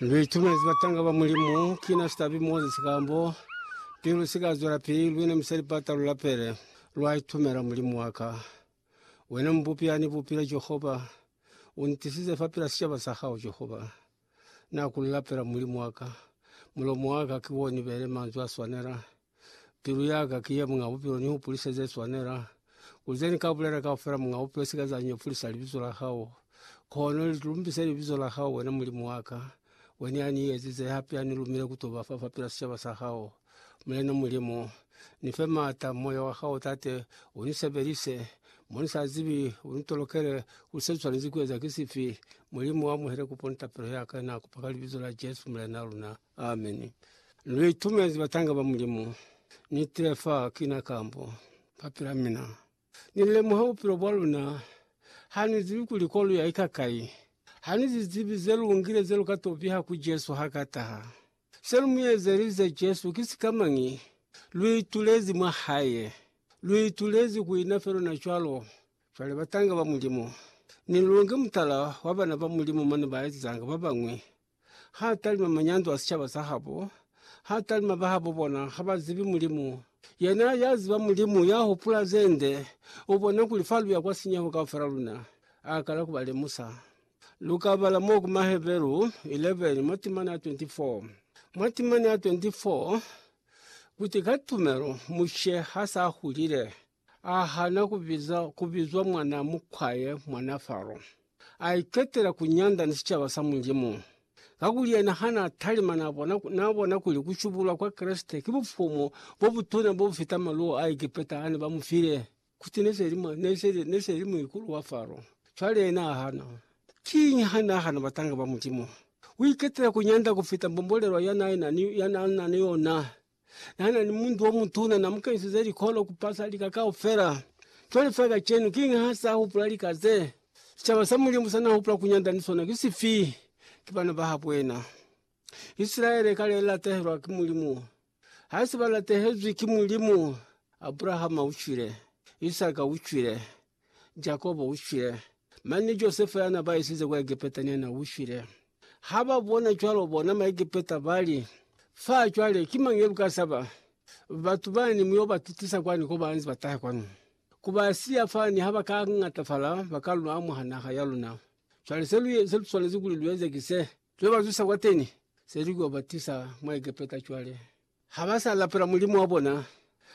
Ndi itumezi batanga ba Mulimu, kina Sitabi Moses kambo pilu si ka zwela pili, lwina mi sa lipata lu lapele, lwa itumela Mulimu wa ka. Wena Mubupi ya ni bupile, Jehova, u ntisize fa pila sicaba sa hao, Jehova. Na ku lapela, Mulimu wa ka, mulomo wa ka ki wo ni bele manzwi a swanela. Pilu ya ka ki ye Muñ'a Bupilo, ni hupulise ze swanela. Kuli ze ni ka bulela kaufela, Muñ'a Bupilo, si ka za nyefulisa libizo la hao. Kono li lumbise libizo la hao, wena Mulimu wa ka, wene ya ni ezize, hape ya ni lumile ku to ba fa fapil'a sicaba sa hao. Mulena Mulimu, ni fe m'ata, Moya wa hao, Tate, u ni sebelise. Mo ni sa zibi, u ni tolokele, kuli se swanezi ku eza ki sifi. Mulimu, amuhele kupo ni tapelo ya ka, na kupa ka Libizo la Jesu, Mulena luna. Amen. Ameni. Lu itumezi batanga ba Mulimu. Ni tile fa kina kambo ba pila mina. Ni lemuha bupilo bwa luna. Ha ni zibi kuli ko lu ya ika kai. Ha ni zi zibi ze lu ngile ze lu ka to piha ku Jesu ha ka taha. Se lu mu ezelize Jesu ki sikamañi? Lu itulezi mwa Hae. Lu itulezi ku ina fe luna cwalo. Cwale batanga ba Mulimu, ni lu nge mutala wa bana ba Mulimu mane ba ezanga ba bañwi Ha talima manyandu a sicaba sa habo, ha talima bahabo bona ha ba zibi Mulimu. Yena ya ziba Mulimu ya hupula ze nde, u bona kuli fa lu ya kwa sinyeho kaufela luna, a kala ku ba lemusa. Lu ka bala mo ku Maheberu 11 mwa timana ya 24. Mwa timana ya 24, Kuti ka tumelo Mushe ha s'a hulile, A hana ku biza ku bizwa mwana mukwaye mwana Faro. A iketela ku nyanda ni sicaba sa Mulimu. Kakuli yena ha na talima na bona, na bona kuli ku shubulwa kwa Kreste ki bufumu bo butuna bo bu fita maluwo a Egepeta a ne ba mu file. Kuti ne se li mwa, ne se li, ne se li muikulu wa Faro. Cwale yena a hana. Kiñi ha n'a hana batanga ba Mulimu? U iketela ku nyanda ku fita mbombolelwa ya n'a na ni yona. Nana ni muntu omutuna, na mukenisize likolo kupasa lika kaufela. Cwale fa kacenu, kiñi ha sa hupula lika ze sicaba sa Mulimu sa na hupula ku nyanda ni sona? Ki sifi? Ki bana ba habo yena. Isilaele kale i latehelwa ki Mulimu. Hasi ba latehezwi ki Mulimu. Abrahama u cwile. Isaka u cwile. Jakobo u shwile, mane ni Josefa ya na ba isize kwa Egepeta ne na u shwile. Ha ba bona cwalo, bona Maegepeta ba li, Fa cwale, ki mañi ye lu ka saba? Batu bani mu yo ba tutisa kwani ko ba nze ba taha kwanu? Ku ba siya fa ni ha ba ka ñatafala, ba ka lu amuha naha ya luna. Cwale se lu swanezi kuli lu eze ki se, lu yo ba zusa kwateni, se lu yo ba tisa mwa Egepeta cwale. Ha ba sa lapela Mulimu wa bona,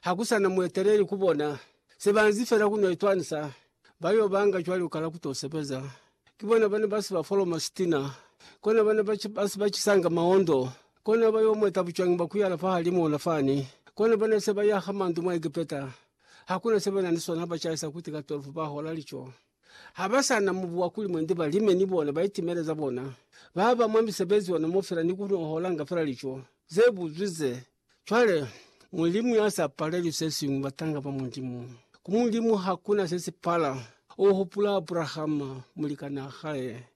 ha ku sa na mueteleli ku bona, se ba nzi fela ku no itwanisa. Ba yo banga cwale u kala ku to sebeza. Ki bona ba ne ba si ba foloma sitina, kona ba ne ba si ba si ba cisanga maondo, kona ba yo mweta bucwangi bwa ku yala fahalimuuna fani, kona ba ne se ba yaha mandu mwa Egepeta, ha ku na se ba na ni sona ha ba caisa kuti ka 12 ba hola lico. Ha ba sa na mubu wa ku lima nde ba lime ni bona, ba itimele za bona. Ba ba mwa misebezi yona mo fela ni ku holanga fela lico ze buzwi ze. Cwale, Mulimu ya sa paleli se siñwi batanga ba Mulimu. Ku Mulimu ha ku na se si pala. U hupula Abrahama, mulikanaa hae.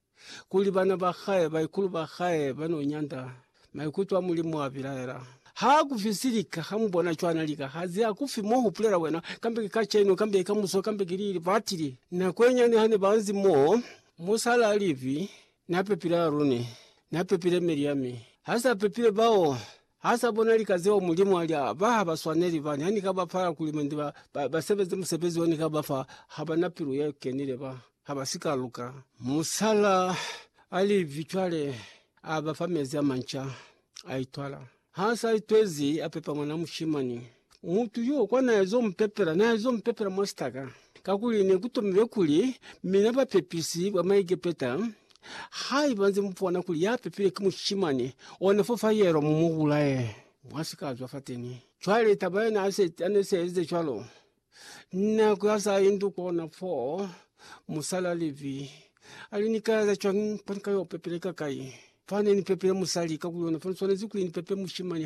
kuli bana ba hae, baikulu ba hae, ba n'o nyanda maikuto a Mulimu a bilaela. Ha ku fi si lika, ha mu bona cwana lika ha ziha ku fi mo hupulela wena, kambe ki kacenu, kambe ki ka muso, kambe ki lili batili. Nako ye nyane ha ne ba nzi mo, musala a livi, Na pepile Arune, na pepile Miriame, ha sa pepile bao Ha sa bona lika zeo Mulimu a li, A ba ha ba swaneli, ba ha ni ka ba fa akulumende ba, ba, ba sebeze musebezi o ni ka ba fa, ha ba na pilu ye kenile, ba ha ba si ka luka. Musala a li, Vi cwale, a ba fa mezi a manca, a itwala. Ha sa itwezi, a pepa mwana mushimani. Mutu yo kwa naezo mupepela, naezo mupepela mwa sitaka, kakuli nekutomile kuli mina bapepisi ba Maigepeta, haiba nze mupona kuli yapepile ki mushimani, ona fo fa yelwa mumubulaye, mwasikazwa fateni. Cwale taba yona ane seezize cwalo, nako ya sa indu kona fo, musala Livi ali, Nikaeza cwañi fo nikayo pepela ikakai? Fane nipepele musali, kakuli ona fa niswanezi kuli nipepe mushimani.